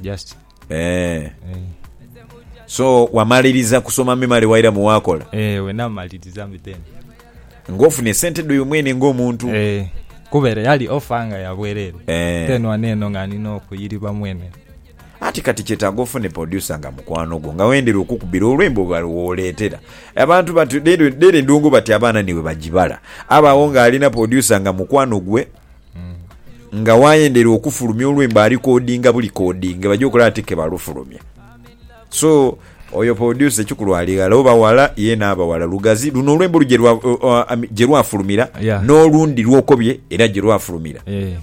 Just. Eeh. Eeh. So wamaliriza kusoma memale waira mu wakola? Eeh wenamaliriza mi then. Nga ofunye sente dho iwe mwene nga omuntu? Eeh kuba ere yali offer nga ya bwerere. Eeh. Then wano eno nga nina okuyiriba mwene. Anti kati kyetaaga ofune producer nga mukwano gwo nga wendera okukubira olwembo bwa woletera abantu bati dhere dhere ndhongo bati abaana niwe bagibala. Abagho nga alina producer nga mukwano gwe. nga wayenderwa okufulumya olwimbo alikodinga bulikodinge baja okola ati kebalufulumya so oyo producer ekikulu ali ghala oba wala yena aba wala lugazi luno olwembo luje lwa jerwafulumira yeah. nolundi lwokobye era jerwafulumira yeah.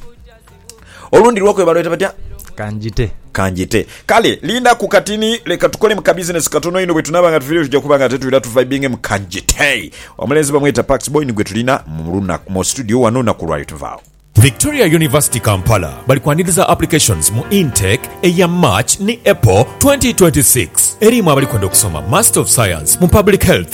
olundi lwokobye balweta batya kanjite kanjite Kale, lindaku kati ni leka tukolemu ka bizinesi katono inho. Bwe tunaaba nga tufiireyo, tuja kuba nga ate twidha tuvibinge mu Kanjitei. Omulenzi bamweta Pax Boy ni gwe tulina mu lunaku, mu situdiyo ghano olunaku olwaleero. Tuvaagho. Victoria University Kampala bali kwaniriza applications mu intake eya March ni April twenty twenty six erimu abali kwenda okusoma Master of Science mu Public Health,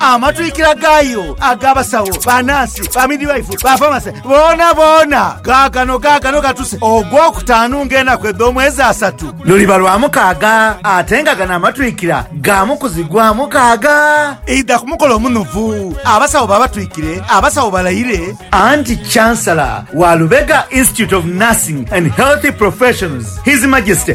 Amatwikira gaayo ag'abasawo, banaasi, bamidwaifu, bafamase, boonaboona gaagano, gaagano gatuse Ogwokutaanu ng'enaku edh'omwezi asatu. Luliba lwa mukaaga, ate nga gano amatwikira ga mu kuzigwa mukaaga. Idha ku mukolo omunuvu, abasawo babatwikire, abasawo balayire. Anti Chancellor wa Lubega Institute of Nursing and Healthy Professions, His Majesty,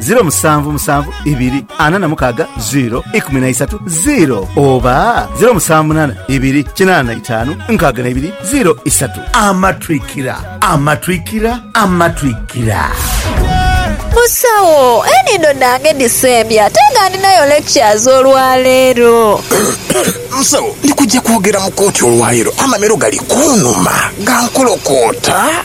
0 musanvu musanvu ibiri ana na mukaaga 0 ikumi na isatu 0 oba 0 musanvu munana ibiri kinana na itaanu nkaaga na ibiri 0 isatu. Amatwikira, amatwikira, amatwikira. Musawo, enindho dhange dhisembye ate nga ndhinayo lectures olwaleero. Musawo, ndi kujja kwogera mu kooti olwaleero, amamiro gali kunuma, gankolokoota.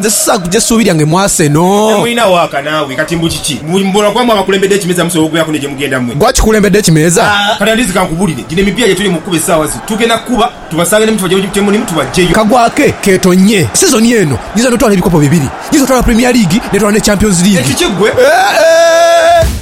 Nze sisaaku gye suubirira ng'emu Arsenal. Mwina waaka naawe kati mbu kiki? Mbu mbu lwakuba mwaba abakulembedde ekimeeza musobola okubeeraku ne gye mugenda mwe? Gwe akikulembedde ekimeeza? Haa kati andizi kankubulire gino emipiira gye tuli mu kukuba essaawa zino tugenda kukuba tubasange ne mutubaggya mu teemu ne mutubaggyeyo. Kagwake keetonnye. Sizoni eno nyinza n'otwala ebikopo bibiri. Nyinza otwala Premier League ne ntwala ne Champions League. Ekiki ggwe? Eeh eeh!